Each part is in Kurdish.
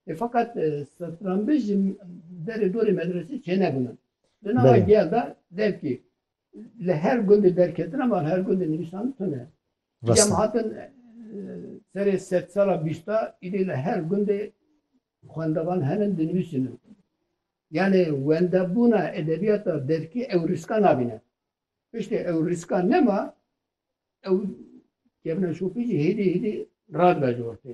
E fakat e, satranbej ji derê dorê medresê çênebûne. Li nava Belê. giya da devkî li her gundê derketina van her gundê nivîsan tune. Cem Rasta. hatin e, serê set sala bîsta îdê li her gundê xwendevan henin dinivîsinin. Yani wendebûna edebiyata devkî ew riska nabîne. Piştê ew riska nema ew kevna şopî jî hêdî hêdî radibej ortê.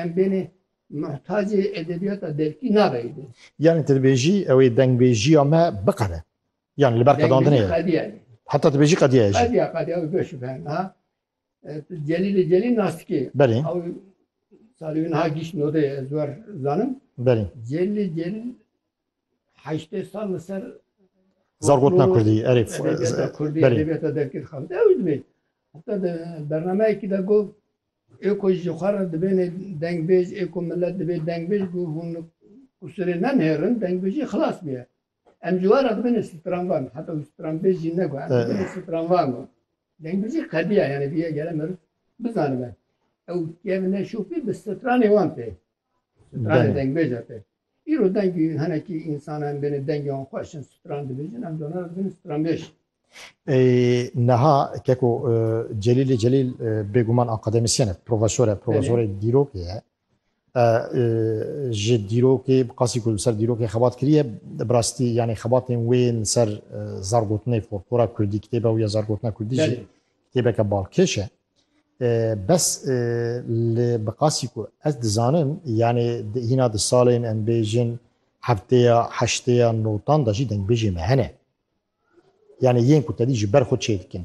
Em bênê muhtacê edebiyata derkî nabe êdî. Yani tu dibêjî ew ê dengbêjiya me biqere. Yani li ber qedandinê ye. Heta dibêjî qediye ye jî. Qediya qediya ew beş be ha. Celîlê Celîl nastikê. Belê. Ew salî wî niha gîşt nodeyê ez wer zanim. Belê. Celîlê Celîl heştê sal li ser Zargotna Kurdî erê Kurdî edebiyata derkir xal de ew dibê heta de bernameyekî de got ê ku ji xwe re dibêne dengbêj ê ku millet dibê dengbêj bû hûn kusirê nenêrin dengbêjî xilas bûye em ji we re dibêne stranvan heta wî stranbêj jî ne got stranvan got dengbêjî qediya yani bîye gele meriv bizanibe ew kevine şopî bi stranê wan tê stranê dengbêja tê Îro dengê hinekî însanan bên e dengê wan xweş in stran dibêjin em dona ez bin stranbêj. Neha keko Celîlê Celîl bêguman akademisyen e, profesor e, profesorê dîrokê ye. Ji dîrokê bi qasî ku li ser dîrokê xebat kiriye bi rastî yanî xebatên wê yên li ser zargotinê folklora kurdî kitêba wî ya zargotina kurdî jî kitêbeke balkêş e. Bes li bi qasî ku ez dizanim yanê hîna di salên em bêjin heftêya, heştêya notan de jî dengbêjê me hene. Yanê yên ku tedî ji ber xwe çê dikin.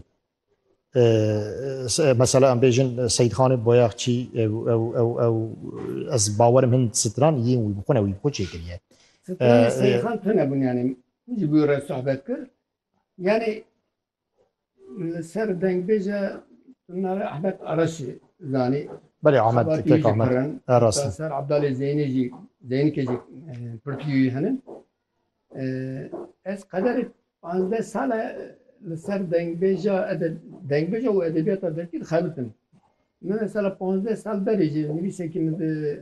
Mesela em bêjin Seyîdxanê Boyaxçî ew ew ew ew ez bawerim hin stran yên wî bi xwe ne wî bi xwe çê kiriye. Stranê Seyîdxan tune bûn yanê ji bo re sohbet kir yanê Li ser dengbêje navê Ahmet Araşê zanî. Belê Ahmet tek Ahmet. Erast. Ser Abdalê Zeynê jî Zeynikê jî pirtiyûyî hene. Ez qederê 15 sale li ser dengbêja dengbêja û edebiyata derkî dixebitim. Min mesela 15 sal berê jî nivîsekî min di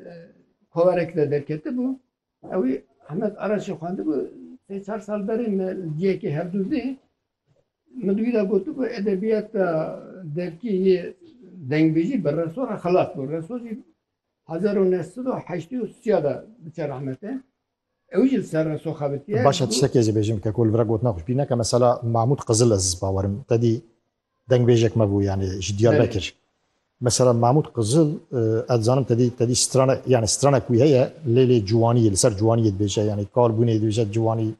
koverek de derketibû. Ewî Ahmet Araçê xwendibû sê çar sal berê me li ciyekê hevdûzî min di wî de gotibû edebiyata derkî yê dengbêjî bi reso re xilas bû. Reso jî hezar û neh sed û heştê û sîya de diçe rehmete. Ew jî li ser reso xebitiye. Baş e tiştekê jî bêjim ke ku li vir e gotina xwe ji bîr neke. Mesela Mahmûd Qizilez bawerim tedî Dengbêjek me bû yanî ji Diyarbekir. Mesela Mahmûd Qizil ez dizanim te dî te dî strana yanî stranek wî heye lê lê ciwanî li ser ciwanîyê dibêje yanî kal bûnê dibêje ciwanî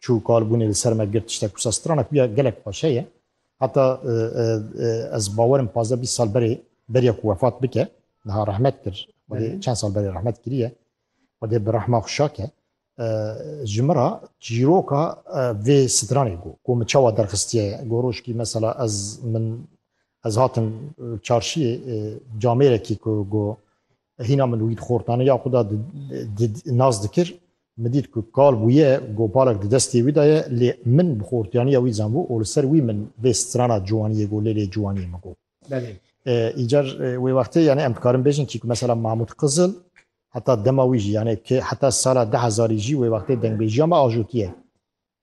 çû kal bûnê li ser me girt tiştek wisa stranek wî ya gelek xweş heye. Heta ez bawer im pazdeh bîst sal berê beriya ku wefat bike niha rehmet kir xwedê çend sal berê rehmet kiriye xwedê bi rehma xwe şake Ji min re çîroka vê stranê got ku min çawa derxistiye got rojkî mesela ez min ez hatim çarşiyê camêrekî ku got hîna min wî xortane ya xwe da nas dikir min dît ku kal bûye got balek di destê wî de ye lê min bi xortiyaniya wî zanbû û li ser wî min vê strana ciwaniyê got lê lê ciwaniyê min got Belê. Încar wê wextê yanî em dikarin bêjin kî ku mesela Mahmûd Qizil heta dema wî jî yanî ki heta sala di hezarî jî wê wextê dengbêjiya me ajotiye.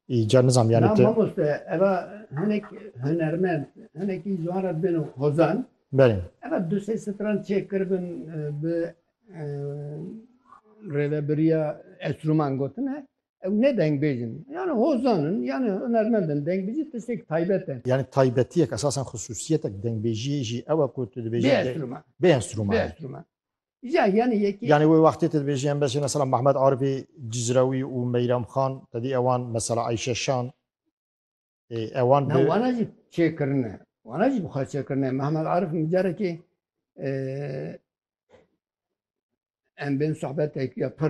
Încar nizam yanî tu. Mamoste eva hinek hunermend hinekî ji wan re dibên hozan. Belê. Eva du sê stran çêkiribin bi rêvebiriya Estruman gotin e. Ew ne dengbêj in. Yani hozan in, yani hunermend in. Dengbêjî tiştek taybet e. Yani taybetiyek esasen xusûsiyetek dengbêjiyê jî ew e ku tu dibêjî Bê enstrûman. Bê enstrûman. Bê enstrûman. Ya yani yekî Yani wê wextê tu dibêjî em besê mesela Mehmet Arifê Cizrewî û Meyrem Xan tedî ewan mesela Ayşe Şan ê ewan bi wana jî çêkirine. Wana jî bixwe çêkirine. Mehmet Arif min carekê em bên sohbetekî ya pir